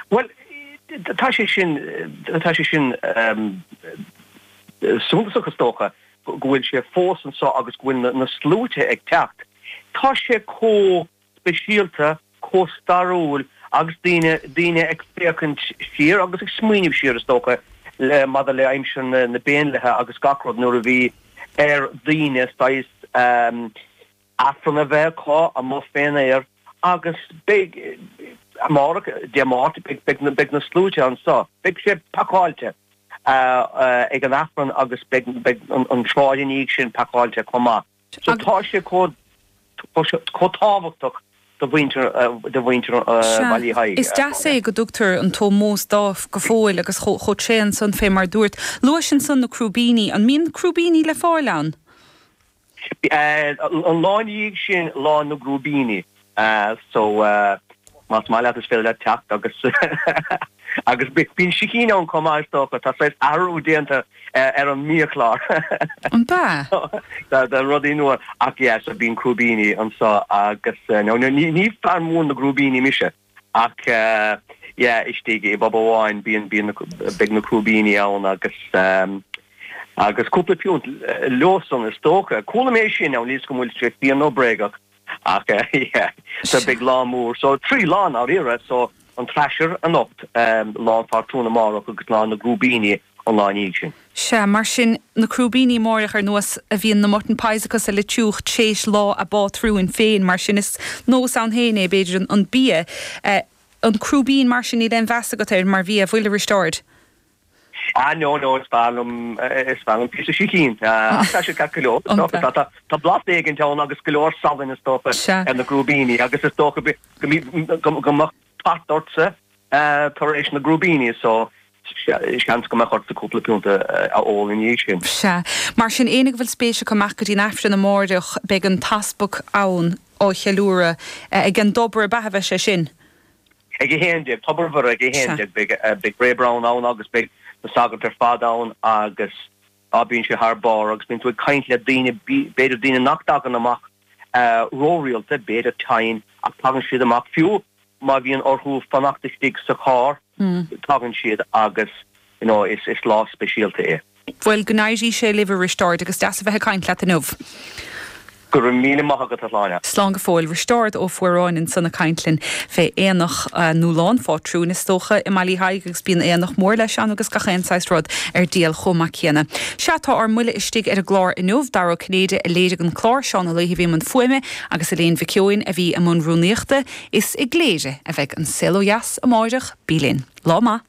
Bhuel, tá sé sin, tá sé sin suntasach is dócha, go bhfuil sé fós anseo agus go bhfuil na sluaite ag teacht. Tá sé chomh speisialta, chomh stairiúil agus daoine, daoine ag féachaint siar agus ag smaoineamh siar is dócha le, maidir le aimsir na bPéindlithe agus gach rud nuair a bhí ar dhaoine saghas, Aifreann a bheith acu amuigh fén aer agus beidh, amárach, Dé Máirt, beidh na sluaite anseo. Beidh sé pacáilte ag an Aifreann agus beidh an tsráid ina dhiaidh sin pacáilte chomh maith. So tá sé chomh tábhachtach do mhuintir Bhaile Uí Thaidhg. Is deas é go dtugtar an t-ómós dóibh go fóill agus chomh tréan san fé mar dúirt. Luaís ansan na Crúibíní. An mbíonn Crúibíní le fáil ann? An lá ina dhiaidh sin Lá na gCrúibíní so más maith leat is féidir leat teacht agus agus bíonn sicín ann chomh maith is dócha, tá saghas athrú déanta ar an mbiachlár An bea? so tá rudaí nua ach yeah so bíonn crúibíní anseo agus now ní fear mór na gcrúibíní mise. Ach yeah istigh i bpub amháin bíonn bíonn na beidh na crúibíní ann agus agus cúpla piúnt leosan is dócha. Chuala mé sin n'fheadar an bhfuil sé fíor nó bréagach ach yeah so Sure. beidh lá mór so trí lá ndáiríre so an trasher anocht, Lá an Phátrúin amárach agus Lá na gCrúibíní. an lá ina dhiaidh sin. Sea, mar sin, na crúibíní amáireach ar nós a bhíonn na mutton pies acu sa Litiúch tréis lá a bpátrúin féin, mar sin, is nós ann féin é, b'fhéidir, an bia, an crúibín, mar sin, níl aon mheas agat air mar bhia, an bhfuil, a Risteáird? Ah, no, no, is fearr liom, is fearr liom píosa sicín, ach tá siad ceart go leor, is dócha, tá, tá, tá blas éigin ann agus go leor salainn, is dócha, ar na crúibíní agus is dócha go, go, go mbeadh, Tart ortsa, tar éis na gcrúibíní so, seans go mbeadh ortsa cúpla piúnt a ól ina dhiaidh sin. Sea. Mar sin, éinne go bhfuil spéis acu dul amach go dtí'n Aifreann amáireach, beidh an t-easpag ann á cheiliúradh. Ag an dTobar a' Bheatha a bheidh sé sin. Ag a haon déag. Tobar Mhuire ag a haon Sea. déag. Beidh Ray Browne ann agus beidh na sagairt ar fad ann agus. Bíonn sé thar barr agus bíonn tú ag caint le daoine, b'fhéidir daoine nach dtagann amach ró-rialta, b'fhéidir tinn ach tagann siad amach, fiú má bhíonn orthu fanacht istigh sa charr, tagann siad agus you know is lá speisialta é. Bhuel go n-éirí sé libh a Risteáird agus deas a bheith ag caint leat inniu. Go raibh míle maith agat, a Shláine. Slán go fóill. Risteárd Ó Fuaráin ansan ag caint linn fé aonach, nó Lá an Phátrúin is dócha, i mBaile Uí Thaidhg agus bíonn aonach mór leis ann agus gach aon saghas rud ar díol chomh maith céanna. Sea, tá ár mbuile istigh ar an gclár inniu. Dara Ó Cinnéide a léirigh an clár, Seán Ó Laoithe a bhí i mbun fuaime agus Elaine Mhic Eoin a bhí i mbun rúnaíochta. Is i gCléire a bheidh An Saol Ó Dheas amáireach. Bí linn. Lá maith.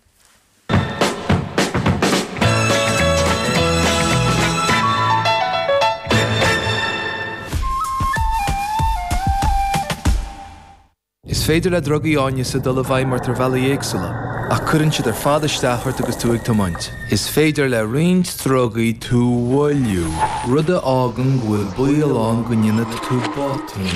Is féidir le drugaí áineasa dul i bhfeidhm ort ar bhealaí éagsúla, ach cuireann siad ar fad isteach ort agus tú ag tiomáint. Is féidir le roinnt drugaí tú a mhoilliú, rud a fhágann go bhfuil baol ann go ndéanfaidh tú botún.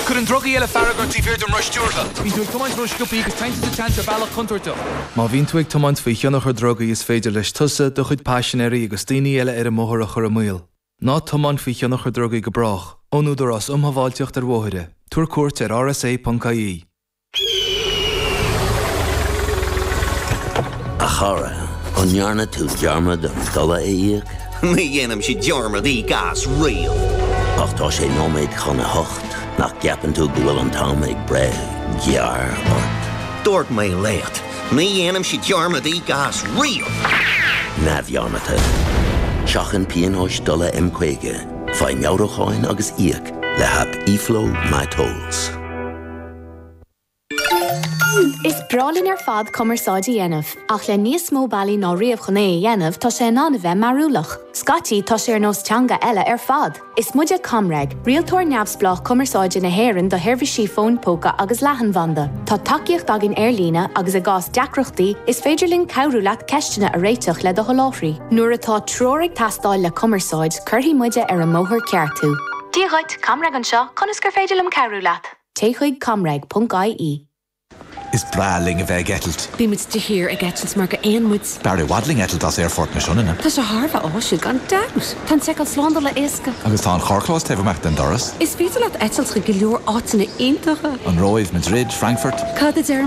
Cuireann drugaí eile fearg ort taobh thiar den roth stiúrtha. Bíonn tú ag tiomáint an-sciobtha agus taitníonn tú teann ar bhealach contúirteach. Má bhíonn tú ag tiomáint faoi thionchar drugaí is féidir leis tusa, do chuid paisinéirí agus daoine eile ar an mbóthar a chur i mbaol. Ná tiomáin faoi thionchar drugaí go brách. Ón Údarás Um Shábháilteacht ar Bhóithre. Tabhair cuairt ar rsa.ie. A chara, an ndearna tú dearmad an dola a íoc? Ní dhéanaimse dearmad íoc as riamh. Ach tá sé nóiméad chun a hocht. Nach gceapann tú go bhfuil an t-am ag breith gearr ort? Dúirt mé leat, ní dhéanaimse dearmad íoc as riamh! neamhdhearmadta. Seachain pionóis dola M50, faigh meabhrúcháin agus íoc le haip eFlow MyTolls. Is breá linn ar fad cumarsáid a dhéanamh, ach le níos mó bealaí ná riamh chun é a dhéanamh tá sé in ann a bheith mearbhlach. Scaití tá sé ar nós teanga eile ar fad! Is muide ComReg, rialtóir neamhspleách cumarsáide na hÉireann do sheirbhísí fóin póca agus leathanbhanda. Tá tacaíocht againn ar líne agus i gcás deacrachtaí is féidir linn cabhrú leat ceisteanna a réiteach le do sholáthraí. Nuair atá treoir ag teastáil le cumarsáid, cuirfidh muide ar an mbóthar ceart thú. Dia dhuit, ComReg anseo, conas gur féidir liom cabhrú leat? Téigh chuig, ComReg, ponc, IE. Is breá linn a bheith ag eitilt. Bíonn muid de shíor ag eitilt mar gur éin muid. B'fhearr i bhfad linn eitilt as Aerfort na Sionainne. Tá sé thar a bheith áisiúil gan dabht! Tá an seiceáil slándála éasca. Agus tá an carrchlós taobh amach den doras. Is féidir leat eitilt chuig go leor áiteanna iontacha. An Róimh, Madrid, Frankfurt. Cad a deirim?